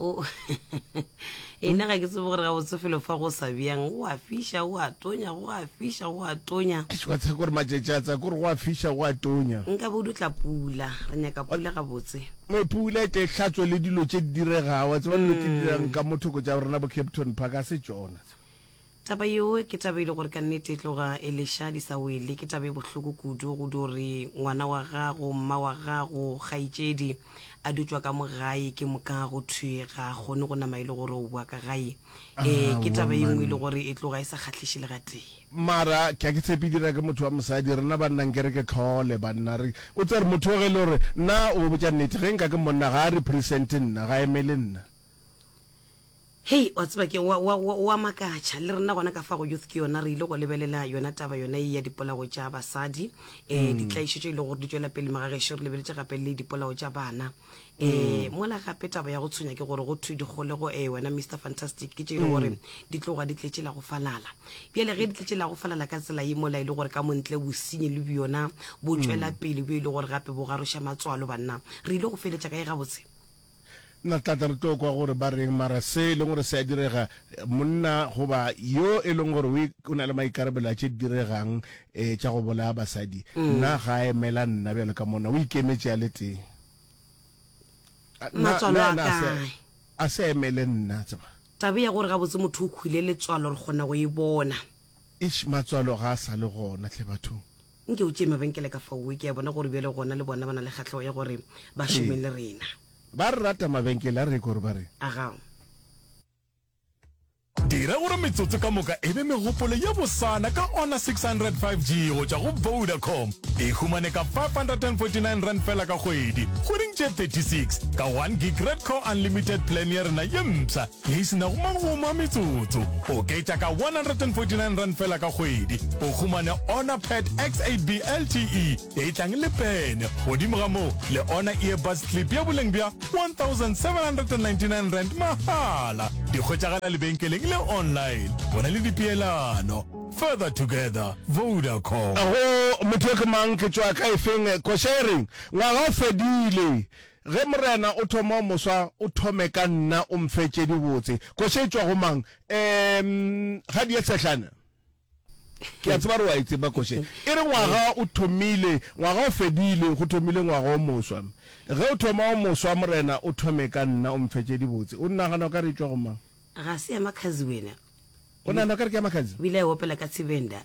O e na ga ke tsebe gore gabotse felo fa go sa bjang, go a fiša, go a tonya, go a fiša, go a tonya. Eish, wa tseba gore matšatši a tsa kore go a fiša, go a tonya. Nkabe o dutla pula, re nyaka pula gabotse. Ee, pula e tle e hlatswe le dilo tše di diregago. Wa tseba dilo tše di dirang ka mo thoko tša rena bo Capton Park ga se tšona tse. Taba yeo ke taba e le gore ka nnete e tloga e leša di sa wele. Ke taba e bohloko kudu go dio re ngwana wa gago, mma wa gago, kgaetšedi a dutšwa ka mo gae ke moka go thwe ga a kgone go nama e le gore o boa ka gae. Ee, ke taba ye nngwe e le gore e tloga e sa kgahliše le gatee. Mara ke a ke tshepe e dira ke motho wa mosadi. Rena banna nke re ke tlhole banna re o tsere motho yo ge e le gore nna o go botša nnete ge nka ke monna ga a represente nna, ga a emele nna. Hei, wa tseba ke wa, wa, wa, wa makatša. Le rena gona ka fa go youth ke yona re ile go lebelela yona taba yona e ya dipolao tša basadi, um ditlaišo tše e le gore di tšwela pele moga gešo re lebeletše gape le dipolao tša bana. Um mola gape taba ya go tshwenya ke gore go thwe dikgolego, um wena Mister Fantastic, ke tše e le gore di tloga di tletše la go falala. Bjale ge di tletše la go falala ka tsela ye mola e le gore ka montle bosenyi le bjona bo tšwela pele bjo e le gore gape bo garoša matswalo, banna re ile go feletša kae gabotse? Na tlata re tlo kwa gore ba reng, mara se e leng gore se a direga, monna goba yo e leng gore o na le maikarabelo a tše di diregang um tša go bolaya basadi, na ga a emela nna bjalo ka monna? O ikemetše a le tee. Na a se a emele nna? Taba ya gore gabotse motho o hwile letswalo re kgona go e bona. Eish matswalo ga a sa le gona hle bathong. Nke o tšee mabenkele ka faowe, ke a bona gore bjale gona le bona ba na le kgahlogo ya gore ba šome Ee. le rena. Ba re rata mabenkele a re gore ba re. Aga. Dira gore metsotso ka moka e be megopolo ye bosana ka Honor 600 5G go tšwa go Vodacom. E humane ka R549 feela ka kgwedi, kgweding tše 36, ka one gig Red Core Unlimited Plan ya rena ye mpsha. Ge e se na go makgoma a metsotso, oketša ka R149 feela ka kgwedi, o humane Honor Pad X8B LTE e tlang le pene, godimo ga moo le Honor Earbuds Clip ya boleng bja R1,799 mahala. Di hwetšagala lebenkeleng le online. Go na le dipeelano. Further together. Vodacom. Go motho yo ke mang, ke tšwa ka efeng, koša e reng, ngwaga o fedile, Ge Morena o thoma o moswa, o thome ka nna, o mphe tše dibotse. Koša e tšwa go mang? Em, ga di ye sehlana. Ke a tseba gore o a e tseba koša e. E re ngwaga o thomile, ngwaga o fedile, go thomile ngwaga o moswa. Ge o thoma o moswa, Morena, o thome ka nna, o mphe tše dibotse. O nagana o ka re e tšwa go mang? Ga se ya Makhazi wena? O nagana o ka re ke ya Makhazi? O ile a e opela ka Tshivenda.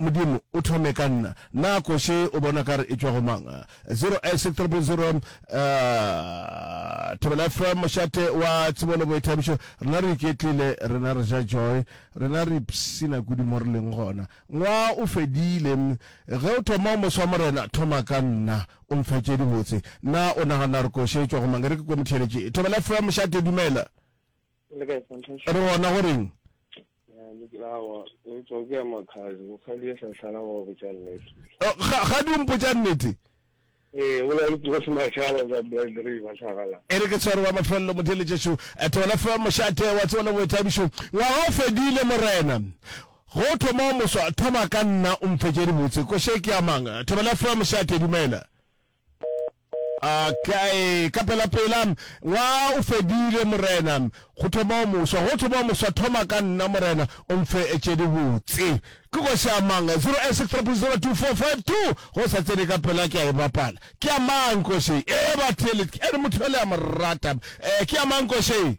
Modimo, o thome ka nna. Na koše o bona kare e tšwa go mang? 08600 Thobela Ephraim Mošate wa Tsebo le Boithabišo, rena re iketlile, rena re ja joy, rena re ipshina kudu mo re leng gona. Ngwaa o fedile. Ge o thoma o moswa, Morena, thoma ka nna, o nfe tše dibotse. Na o nagana gore koše e tšwa go mang? E re ke kwe motheeletši. Thobela Ephraim Mošate, dumela. re gona go reng gadi o mpotsa nnete e re ke tshware ba mafelelo motheletšešo thola fa mošate wa tsebo le boithabišo ngwaga o fedile morena go thoma o moswa thoma ka nna o mfetše dibotse koše ke amang thobela fa mošate dumela Okay, ka pela pela ngwaga o fedile morena, go thoma o moswa, go thoma o moswa, thoma ka nna morena, o mfe tše di botse. Ke go se amang 08630225 go sa tsene ka pela ke a e bapala. Ke amang koše. E ba thelet, e re motho le a morata. Eh, ke amang koše.